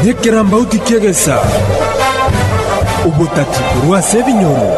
Nekerambauti ki'egesa, obotati korwa ase ebinyoro.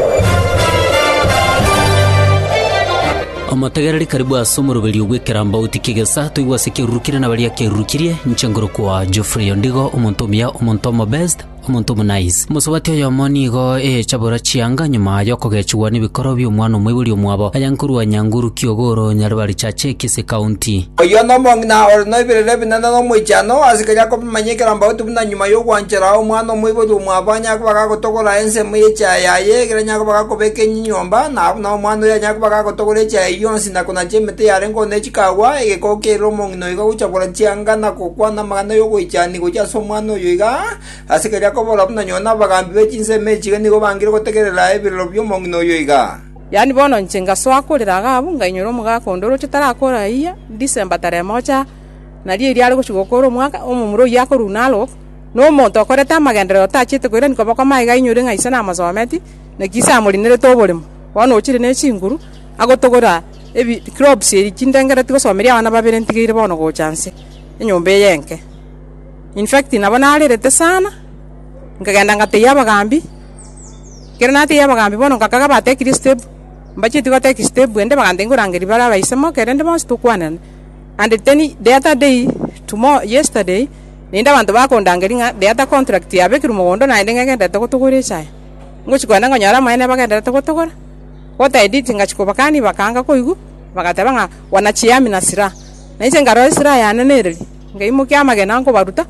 Omotegereri karibu ase omoroberio bw'ekerambauti ki'egesa toigwe ase kiarurukirie na baria kiarurukirie, inche ngorokwa Geoffrey Ondigo, omonto omuya, omonto omobe. Omonto omonaiz. Omosubati oyomo nigo eyechabora chianga nyuma y'okogechigwa nebikoro bi'omwana omoibori omwabo, aye nkorwa Nyanguru Kiogoro, Nyaribari Chache, Kisii County. Oyio nomong'ina ore noebirerio ebinene nomoichano ase keria akobimanya ekerambauti buna nyuma y'ogwanchera omwana omoibori omwabo anyare koba gagotogora ensemo y'echiaye yaye egere anyare koba gakobeka enyinyi nyomba na buna omwana oyio anyare koba gagotogora echiaye yonsi na konachia emete yarengeo ne chikagwa egekoo kiaire omong'ina noika gochakora chianga na gokwana amagana y'ogoichania gochia ase omwana oyo iga, ase keria kobora buna nyoo n'abagambi be chinsemo echi iga nigo bangire gotegerera ebirero bi'omong'ina oyo iga. Yaani bono inche ngasoa korera iga abwo, ngainyora omogaka onde oroche tarakora ahiya, December tarehe mocha, nario erio are gochia gokora omwaka, omomura oyio akorua Narok, na omonto okorete amagenderero otachete koirani koboko maiga ainyore ng'a ise namosometie, naki ise amorinerete oboremo, bono ochire ne chinguru. agotogora ebi clobes ebi chindengera tigosomeria abana babere ntigeire bono gocha nse enyomba eye enke in fact nabo narerete sana nkagenda ngatebia abagambi ekero natebia abagambi bono nkakaga batekiri step mbacheti goteki step ende bagantebia orangeri bare abaise moke rende bonsi tokwanane and teni the other day tomo yesterday naende abanto bakondangeri ng'a the other contract yabekerwa mogondo naende ng'egenderete gotogora echae ngochi kogenda nkonyora abamama neba bagenderete gotogora. Gotaeteti ngachia kobakania, bakaanga koigwa, bagateba ng'a, Wanachia ami na silaha. Na inche nkarora esilaha yane nereria, nkaimokia amagena nkobaruta,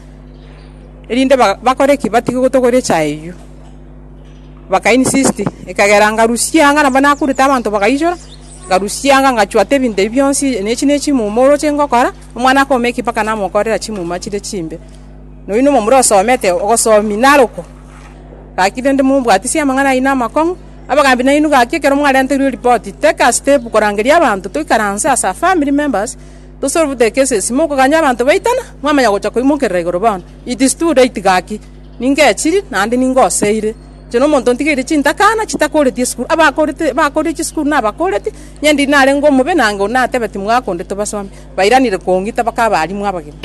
erinde bakore ki? Batige gotogoria echaye eyio. Bakainsist, ekagera ngarusia anga nabo nakurete abanto bagainchora, ngarusia anga ngachwata ebinto ebi bionsi, na echi nechimuma oroche ngokora, omwana akome eki mpaka namokorera chimuma chire chimbe. Na oyio nomomura osomete, ogosomi narokwa? Gaki rende mombwatisie amang'ana ayio namakong'u. Abagaambi nainwe gaki ekero mwarenterwe ripoti, take a step korangeria abanto toikaranse as a family members to solve the cases. Mokoganya abanto baitana, mwamanya gocha koimokerera igoro bono. It is too late gaki. Ningechiri naende ningoseire. Inche na omonto ntigeire chintakana chitakoreti esukuru. Abakorete, bakorire chisukuru nabakoreti, inye ndiri narenge omobe, nango natebe timwakondetwe basomi. Bairanire kong'ita bakaba abarimu abagima.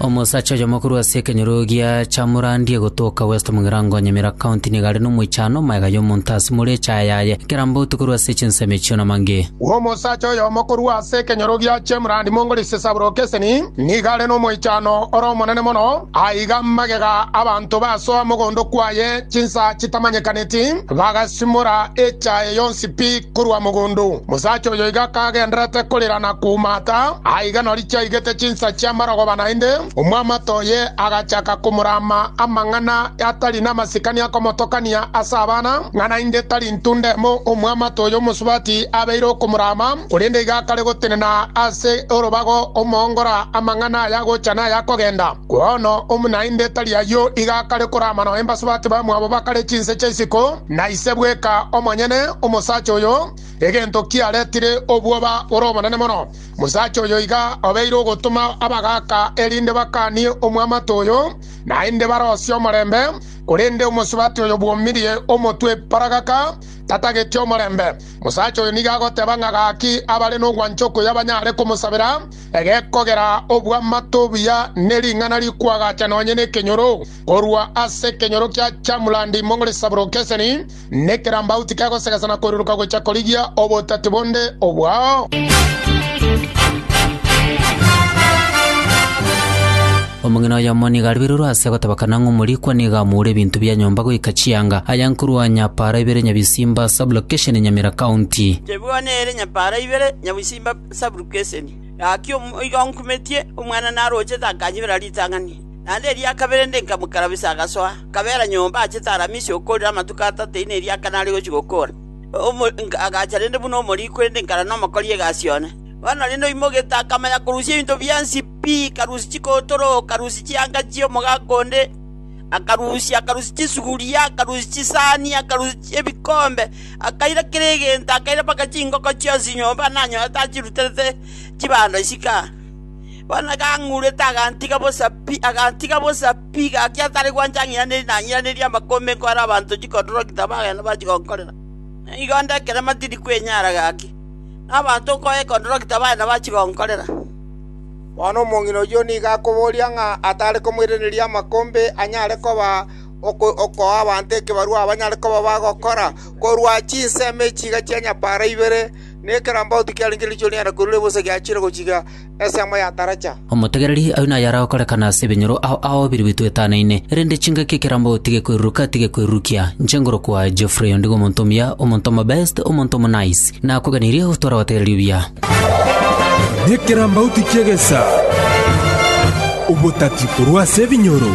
Omosacha oyomo korwa ase ekenyoro gia Chamurandie gotoka West Mugirango Nyamira County nigo are nomoichano magega y'omonto ase more echaaya yaye kera mbotu korwa ase chinsemo echio na mange. Omosacha oyomo korwa ase ekenyoro gia Chamurandi Mongolisi Saburokeseni nigo are nomoichano ore omonene mono aiga magega abanto basoa mogondo kwaye chinsa chitamanyekaneti, bagasimora echaye yonsi pi korwa mogondo. Mosacha oyo iga kagenderete korera na koumata, aiga nori chiaigete chinsa chi'amarogba naende, omwamate oye agachaka komorama amang'ana atari namasikani akomotokania ase abana, ng'a naende tari intunda emo omwamate oyo omosubati abeire okomorama, korende iga akare gotenena ase orobago omoongora amang'ana ayagocha na ayakogenda. Bono omonaende tari ayio iga akare korama noe mbaso bake bamwabo bakare chinse chia isiko, na ise bweka omonyene omosacha oyo, egento kiaretire obwoba bore obonene mono. Omosacha oyo iga obeire ogotoma abagaaka erinde bakanie omwamate oyo, naende barosie omorembe, korende omosubati oyo bwomirie omotwe paragaka, tatageti omorembe. Omosacha oyo nigo agoteba ng'a gaki abare nogwancha okoya banyare komosabera, Egekogera obw'amato obuya ne ring'ana rikwagacha nonya nekenyoro, korwa ase ekenyoro kia chamulandi imong'ore saburo keseni, ne kerambau tikegosegesa na koiruruka gocha korigia obotati bonde obwao. Omong'ina oyomo nigo aribererwe ase gotabakana ng'a omorikwa nigo amoure ebinto bia nyomba goika chianga, aya nkorwa Nyapara ibere Nyabisimba sublocation Nyamira county. Chebwano ere Nyapara ibere Nyabisimba Saburukeseni. Gaki omoika onkumetie, omwana narochete akanyibera ritang'ani. Naende eria kabere inde nkamokarabisa agasoa, akabeera nyomba achete Aramisi okoorire amatuko atato eina eria Akana are gochia gokoora. Agacha rende buna omoriikwa inde nkara nomokori egasi one. Bono rende oimogete akamanya korusia ebinto biansi pi, akarusia chikootoro, akarusia chianga chi'omogaka onde, akarusia chisuguria, akarusia chisani, akarusia ebikombe, Akaira kera egento, akaira mpaka chingoko chionsi nyomba nanyorete achiruterete chibando isiko aa. Bono gang'urete agantiga bosa pi, agantiga bosa pi, gaki atari gwancha ang'iraneri nang'iraneria amakombe nkore abanto chikodoroki tabagenda bachi gonkorera. Nigo onde ekerema tindi kwenyara gaki, na abanto nkoye ekodoroki tabagenda bachi gonkorera. Bono omong'ina oyio nigo akoboria ng'a atare komoiraneria amakombe anyare koba okoa abanto ekebarua abanyare koba bagokora korwa chinsemo echi chiga chia nyabaara ibere, na ekerambaotu kiarenge riicho rinyare koirwa ribosa giachire gochika ensemo ya taracha. Omotegereri ayio naye ara okorekana ase ebinyoro ao ao birobetwe etanaine, erinde chingaki ekerambaotu tigekweruruka tigekwerurukia. Inche ngorokwa Geoffrey ondigo omonto omuya, omonto omobe, omonto omo nice, nakoganirie gotwara abategereri obuya. Nekerambauti ki'egesa, obotati korwa ase ebinyoro.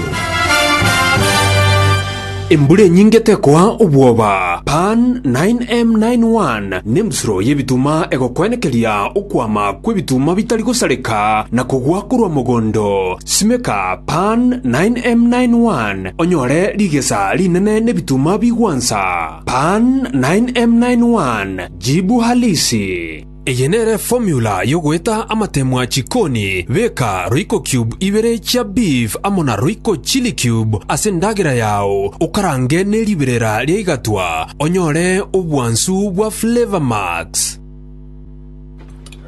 Embura enyinge tekoa obwoba. Pan 9M91 nembusuro y'ebituma egokwenekeria okwama kw'ebituma bitari gosareka na kogwa korwa mogondo. Simeka Pan 9M91 onyore rigesa rinene n'ebituma bigwansa. Pan 9M91. Jibu halisi. Eye nere formula yogoeta amatemwa chikoni, beka royco cube ibere chia beef amo na royco chili cube ase endagera yao, okarange ne riberera ria igatwa, onyore obwansu bwa flavor max.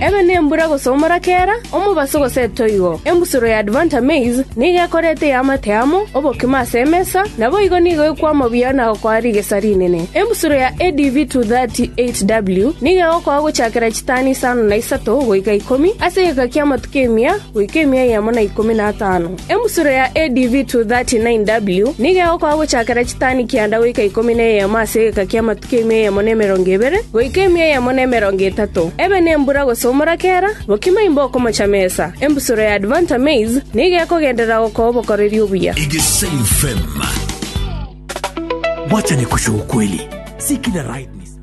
Ebe nembura gosomora kera omobaso gose etoigo. Embusuro ya Advanta Maize nigo ekorete eamate amo obokima ase emesa, naboigo nigo ekwama buya na gokoa rigesa rinene. Embusuro ya ADV 238W nigo egokoa gochakera chitani isano na isato goika ikomi ase egeka ki'amatuko emia goika emia eyemo na ikomi na atano. Emusuro ya ADV 239W. Nigo egokora gochakera chitani kianda goika ikomi na eyemo ase egeka ki'amatuko ime eyemo na emerongo ebere, goika ime eyemo na emerongo etato, ebe nembura gose omorakera, bokima imbe okomocha mesa. Embusuro ya Advanta Maize nigo ekogenderera gokoa obokoreri obuya. Egesaim fm. Wacha nikushe ukweli, si kila right ni sawa.